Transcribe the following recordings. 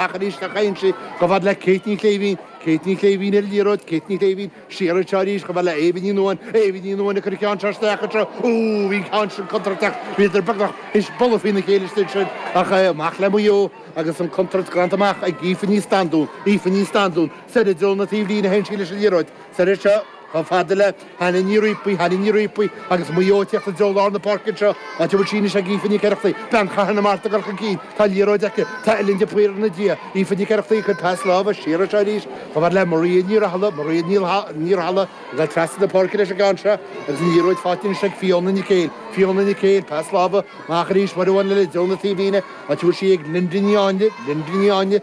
Ach arís a théann sí chomh fada le Kate Ní Shléibhín. Kate Ní Shléibhín ar an liathróid, Kate Ní Shléibhín siar anseo arís chomh fada le Éabha Ní Nuadháin. Éabha Ní Nuadháin ag cur an cheann seo isteach anseo. Ó, bhí an ceann sin contúirteach. Bhíodar beagnach ag bualadh faoina chéile istigh ansin ach amach le Maigh Eo agus an chontúirt glanta amach ag Aoife Ní Standún. Aoife Ní Standún, soir i dtreo na taobhlíne a théann sí leis an liathróid. Soir anseo. Chomh fada le Hannah Ní Riapaigh, Hannah Ní Riapaigh, agus Maigh Eo ag tíocht i dtreo lár na páirce anseo, áit a bhfuil sí anois ag Aoife Nic Oireachtaigh, bean Chathair na Mart, ag dul chun cinn. Tá an liathróid aici. Tá Ellen de Paor ina diaidh. Aoife Nic Oireachtaigh ag cur pas láimhe siar anseo arís. Chomh fada le Maria Ní Rathaille, Maria Ní Rathaille ag dul trasna na páirce leis an gceann seo agus an liathróid faighte anois ag Fiona Nic Éil. Fiona Nic Éil, pas láimhe amach arís, uair amháin eile i dtreo na taobhlíne, áit a bhfuil sí ag Linda Ní Áinle, Linda Ní Áinle,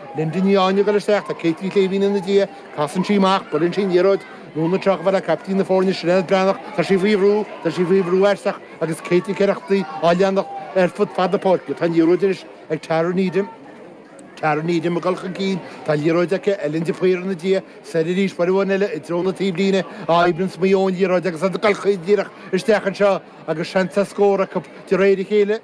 Linda Ní Áinle ag dul isteach, tá Kate Ní Shléibhín ina diaidh, casann sí amach, buaileann sí an liathróid anonn anseo chomh fada le caiptín na foirne Sinéad Breathnach, tá sí faoi bhrú, tá sí faoi bhrú aisteach agus Kate Nic Oireachtaigh á leanacht ar fud fad na páirce, tá an liathróid anois ag Tara Needham, Tara Needham ag dul chun cinn, tá an liathróid aici, Ellen de Paor ina diaidh, soir arís, uair amháin eile i dtreo na taobhlíne, a oibríonns Maigh Eo an liathróid agus iad ag dul caol díreach isteach anseo agus seans ar scór acu de réir a chéile.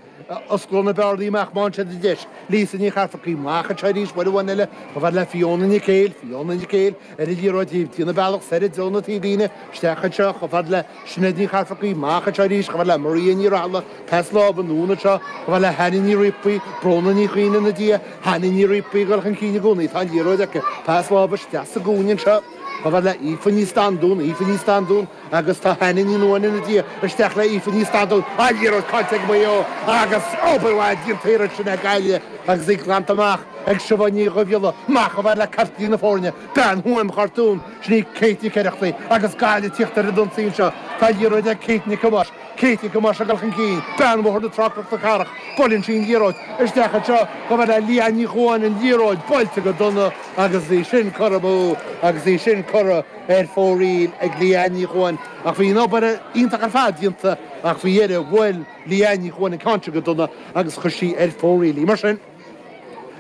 Osclóidh na bearnaí amach maidin seo de deis. Lisa Ní Cheafarcaigh, amach anseo arís, uair amháin eile, chomh fada le Fiona Nic Éil, Fiona Nic Éil ar an liathróid ag déanamh a bealach soir i dtreo na taobhlíne, isteach anseo, chomh fada le Sinéad Ní Cheafarcaigh, amach anseo arís, chomh fada le Maria Ní Rathaille, pas láimhe anonn anseo, chomh fada le Hannah Ní Riapaigh, Bróna Ní Chuinn ina diaidh, Hannah Ní Riapaigh ag dul chun cinn i gcónaí, tá an liathróid aici, pas láimhe isteach sa gcúinne anseo, chomh fada le Aoife Ní Standún, Aoife Ní Standún, Agus tá Hannah Ní Nuadháin ina diaidh isteach le Aoife Ní Standún, an liathróid caillte ag Maigh Eo agus obair mhaith déanta ansin ag Gaillimh agus í glanta amach ag Siobhán Ní Dhuibhghiolla, amach chomh fada le caiptín na foirne, bean Thuaim Chartúin, sin í Kate Nic Oireachtaigh agus Gaillimh ag tíocht ar an ionsaí anseo, tá an liathróid ag Kate Nic Thomáis, Kate Nic Thomáis ag dul chun cinn, bean Bhóthar na Trá-Cnoc na Cathrach, buaileann sí an liathróid isteach anseo chomh fada le Leanne Ní Chuain, an liathróid buailte go dona agus í sin curtha amú agus í sin curtha. ar fóraoil ag Leanne Ní Chuain ach bhí an obair iontach ar fad déanta ach faoi dheireadh bhuail Leanne Ní Chuain an ceann sin go dona agus chuir sí ar fóraoil í. Mar sin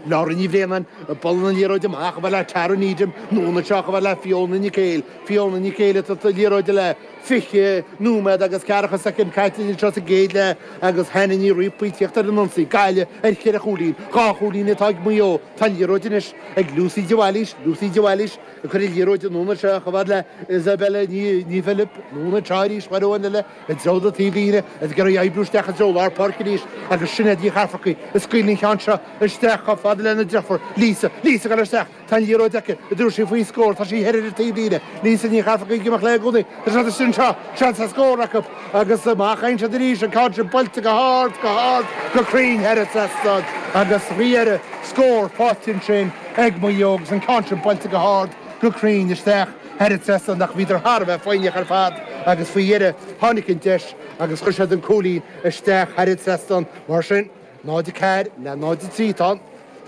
Laura Ní Bhraonáin ag bualadh na liathróide amach chomh fada le Tara Needham anonn anseo chomh fada le Fiona Nic Éil, Fiona Nic Éil ag tabhairt na liathróide léi fiche nóiméad agus ceathracha soicind caite anseo sa gcéad leath agus Hannah Ní Riapaigh ag tíocht ar an ionsaí. Gaillimh ar cheithre chúilín, dhá chúilín atá ag Maigh Eo. Tá an liathróid anois ag Lucy de Bhailís, Lucy de Bhailís, Cur na liathróide anonn anseo chomh fada le Isabella Ní Philib, anonn anseo arís, uair amháin eile i dtreo na taobhlíne ag iarraidh oibriú isteach i dtreo lár páirce arís agus Sinéad Ní Cheafarcaigh ag scaoileadh an cheann seo isteach chomh fada lena deirfiúr Lisa. Lisa ag dul isteach, tá an liathróid aici an dtabharfaidh sí faoi scór, tá sí thoir ar an taobhlíne, Lisa Ní Cheafarcaigh ag imeacht léi i gcónaí, tá seans anseo, seans ar scór acu. Agus amach a théann siad arís, an ceann seo buailte go hard, go hard, go cruinn thar an trasnán agus faoi dheireadh scór faighte ansin ag Maigh Eo agus an ceann sin buailte go hard, go cruinn isteach thar an trasnán ach bhíodar thar a bheith foighneach ar fad agus faoi dheireadh tháinig an deis agus chuir siad an cúilín isteach thar an trasnán. Mar sin. 0-4 le 0-3 atá ann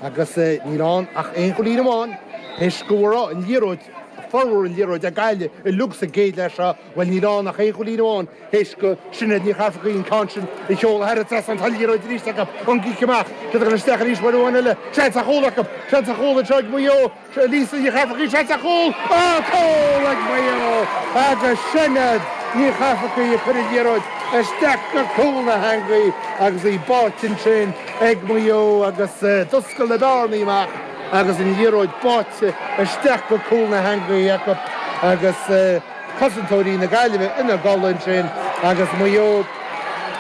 agus níl ann ach aon chúilín amháin tar éis go raibh an liathróid, formhór an liathróid ag Gaillimh uilig sa gcéad leath seo, bhuel níl ann ach aon chúilín amháin tar éis do Sinéad Ní Chafarcaigh an ceann sin a sheoladh thar an trasnán, tá an liathróid arís acu, ón gcic amach, cic isteach arís, uair amháin eile, seans ar chúl acu, seans ar chúl anseo ag Maigh Eo. Lisa Ní Chafarcaigh seans ar chúl acu, cúl ag Maigh Eo agus Sinéad Ní Chafarcaigh a chuir an liathróid isteach go cúl na heangaí agus í báite ansin ag Maigh Eo agus d'oscail na bearnaí amach agus an liathróid báite isteach go cúl na heangaí acu agus cosantóirí na Gaillimhe ina gcodladh ansin agus Maigh Eo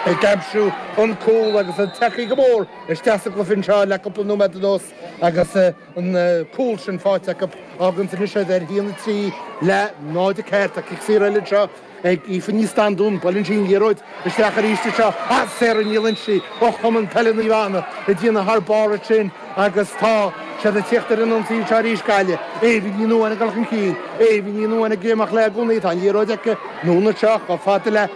ag aimsiú an cúl agus ag teacht go mór isteach sa gcluiche anseo le cúpla nóiméad anuas agus. an cúl sin faighte acu a fhágann anois iad ar 1-3 le 0-4. Cic saor eile anseo ag Aoife Ní Standúin. Buaileann sí an liathróid isteach arís anseo ach Sarah Ní Loingsigh ó Chumann Peile Naomh Anna ag déanamh thar barr ansin agus tá siad ag tíocht ar an ionsaí anseo arís. Gaillimh. Aoibhinn Ní Nuadháin ag dul chun cinn. Aoibhinn Ní Nuadháin ag imeacht léi i gcónaí. Tá an liathróid aici. Anonn anseo chomh fada le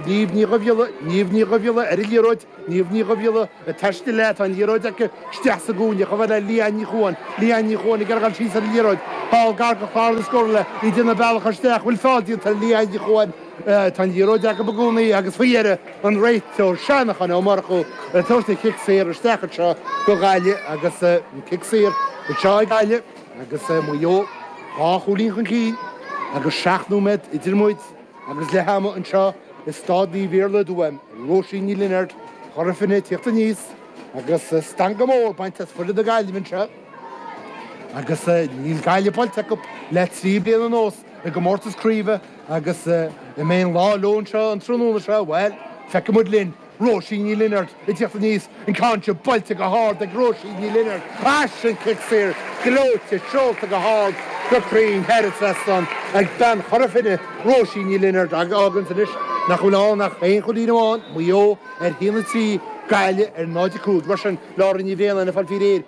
Niamh Ní Dhuibhghiolla. Niamh Ní Dhuibhghiolla ar an liathróid. Niamh Ní Dhuibhghiolla ag taisteal léi, tá an liathróid aici, isteach sa gcúinne, chomh fada le Leanne Ní Chuain, Leanne Ní Chuain ag gabháil síos ar an liathróid, ball gar go clár na scór le í déanamh a bealach isteach, an bhfuil feall déanta ar Leanne Ní Chuain, tá an liathróid aici i gcónaí agus faoi dheireadh an réiteoir Seanachán Ó Murchú ag tabhairt an chic saor isteach anseo do Ghaillimh agus an cic saor anseo ag Gaillimh agus Maigh Eo dhá chúilín chun cinn agus seacht nóiméad idir muid Agus leath ama anseo i Staid Naomh Iarlaith i dTuaim, Róisín Ní Lionáird, Chora Finne ag tíocht aníos agus stangadh mór bainte as foireann na Gaillimhe anseo agus níl Gaillimh buailte acu le trí bliain anuas i gcomórtas craoibhe agus an mbeidh an lá leo anseo an tráthnóna seo, bhuel, feicfidh muid linn. Róisín Ní Lionaird ag tíocht aníos, an ceann seo buailte go hard ag Róisín Ní Lionaird agus an cic saor gleoite seolta go hard go cruinn thar an trasnán ag bean Chora Finne, Róisín Ní Lionaird a fháganns anois nach bhfuil ann ach aon chúilín amháin, Maigh Eo ar 1-3, Gaillimh ar 0-5. Mar sin, Laura Ní Bhraonáin ag fáil faoi réir.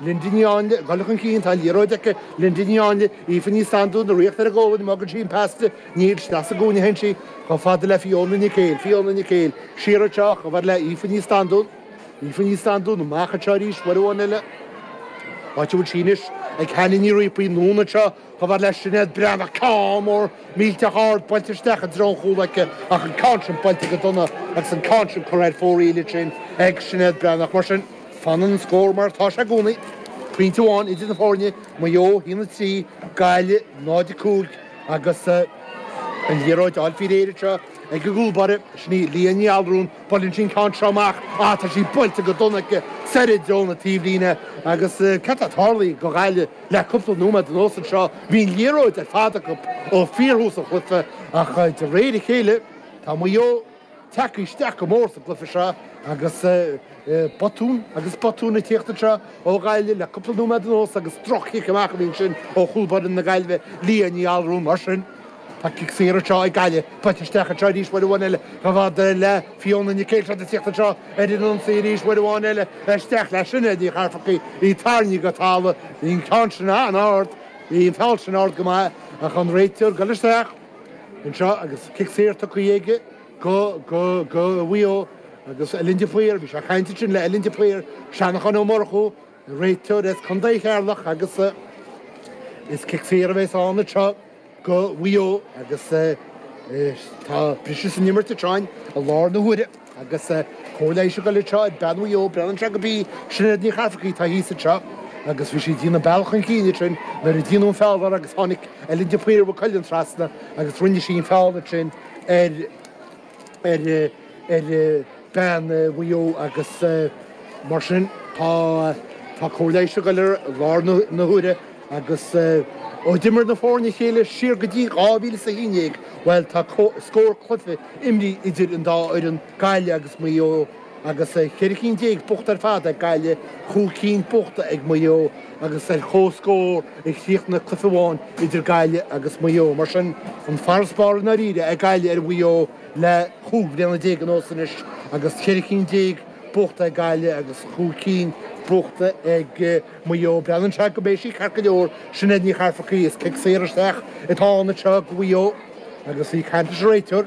Linda Ní Áinle ag dul chun cinn, tá an liathróid aici. Linda Ní Áinle, Aoife Ní Standúin ag rith ar a gualainn, an mbogann sí an pas di? Níl, isteach sa gcúinne a théann sí chomh fada le Fiona Nic Éil. Fiona Nic Éil, siar anseo chomh fada le Aoife Ní Standúin. Aoife Ní Standúin, amach anseo arís, uair amháin eile. Áit a bhfuil sí anois, ag Hannah Ní Riapaigh, anonn anseo. Chomhar le Sinéad Breathnach, ceann mór millteach ard buailte isteach i dtreo an chúl aici ach an ceann sin buailte go dona agus an ceann sin curtha ar fóraoil ansin ag Sinéad Breathnach. Mar sin, fanann an scór mar atá sé i gcónaí, pointe amháin idir na foirne, Maigh Eo 1 3, Gaillimh 0 5, agus an liathróid á fáil faoi réir anseo ag an gcúl báire, sin í Leah Ní Allúráin, buaileann sí an ceann seo amach, ah tá sí buailte go dona aici soir i dtreo na taobhlíne agus cad atá tarlaithe do Ghaillimh? Le cúpla nóiméad anuas anseo bhí an liathróid ar fad acu ó fíorthús an chluiche ach de réir a chéile tá Maigh Eo tagtha isteach go mór sa gcluiche seo agus botún agus botún ag teacht anseo ó Ghaillimh le cúpla nóiméad anuas agus droch-chic amach a bhí ansin ó chúl báire na Gaillimhe, Leah Ní Allúráin. Mar sin. Tá cic saor anseo ag Gaillimh. Buailte isteach anseo arís uair amháin eile. Ba mhaith do fhear leath Fiona Nic Éil ag tíocht anseo ar an ionsaí arís uair amháin eile. Isteach le Sinéad Ní Chafarcaigh. Í tarraingthe go talamh. Bhí an ceann sin an-ard. Bhí an feall sin ard go maith ach an réiteoir ag goil isteach anseo agus cic saor tugtha aige go, go, go Mhaigh Eo agus Ellen de Paor. Bhí sé ag caint ansin le Ellen de Paor, Seanachán Ó Murchú. Réiteoir as Contae Cheatharlach agus is cic saor a bheas ann anseo go Mhaigh Eo agus tá briseadh san imirt anseo i láthair na huaire agus cóir leighis ag goil anseo ar bean Mhaigh Eo, breathnann sé gurb í Sinéad Ní Chafarcaigh atá thíos anseo agus bhí sí ag déanamh bealach chun cinn ansin nuair a déanadh an feall uirthi agus tháinig Ellen de Paor Mhaigh Cuilinn trasna agus rinne sí an feall ansin ar ar bean Mhaigh Eo agus mar sin tá cóir leighis ag goil uirthi i láthair na huaire agus ó d'imir na foirne a chéile siar go dtí 2011, bhuel tá scór cluiche imrithe idir an dá fhoireann, Gaillimh agus Maigh Eo. agus ceithre cinn déag buachta ar fad ag Gaillimh, chúig cinn buachta ag Maigh Eo agus ar comhscór a chríochnaigh cluiche amháin idir Gaillimh agus Maigh Eo. Mar sin, an farasbarr i ndáiríre ag Gaillimh ar Mhaigh Eo le chúig bliana déag anuas anois agus ceithre cinn déag buachta ag Gaillimh agus chúig cinn buachta ag Maigh Eo. Breathnaíonn sé go mbeidh sí ceart go leor. Sinéad Ní Chafarcaigh, Is cic saor isteach atá ann anseo ag Mhaigh Eo agus í ag caint leis an réiteoir.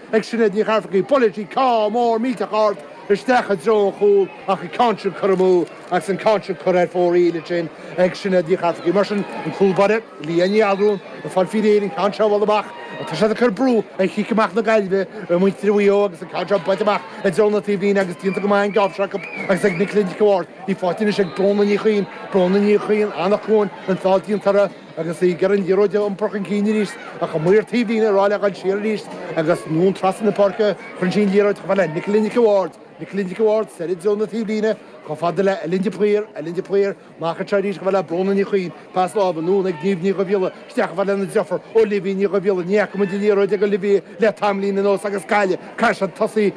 ag Sinéad Ní Chafarcaigh buaileann sí ceann mór millteach ard isteach i dtreo an chúl ach an ceann sin curtha amú agus an ceann sin curtha ar fóraoil ansin ag Sinéad Ní Chafarcaigh. Mar sin an cúl báire Leah Ní Allúráin ag fáil faoi réir an ceann seo a bhualadh amach ach tá siad ag cur brú ar chic amach na Gaillimhe ar mhuintir Mhaigh Eo agus an ceann seo buailte amach i dtreo na taobhlíne agus déanta go maith an geábh seo acu agus ag Nicola Nic an Bhaird. Í faighte anois ag Bróna Ní Chuinn, Bróna Ní Chuinn, Anach Cuain, an feall déanta uirthi. Agus í ag iarraidh an liathróid a iompar chun cinn arís, ach chuaigh mar taobhlíne rogha gabháil siar arís agus anonn trasna na páirce, chuir sí an liathróid chomh fada le Nicolaí Nic a' Bháird. Nicolaí Nic a' Bháird soir i dtreo na taobhlíne chomh fada le Ellen de Paor. Ellen de Paor amach anseo arís chomh fada le Bróna Ní Chuinn. Pas láimhe anonn ag Niamh Ní Dhubhghiolla isteach chomh fada lena deirfiúr, Olivia Ní Dhubhghiolla. Ní fhaca muid an liathróid ag Olivia le tamallín anuas agus Cailleach a' cosa tosaigh.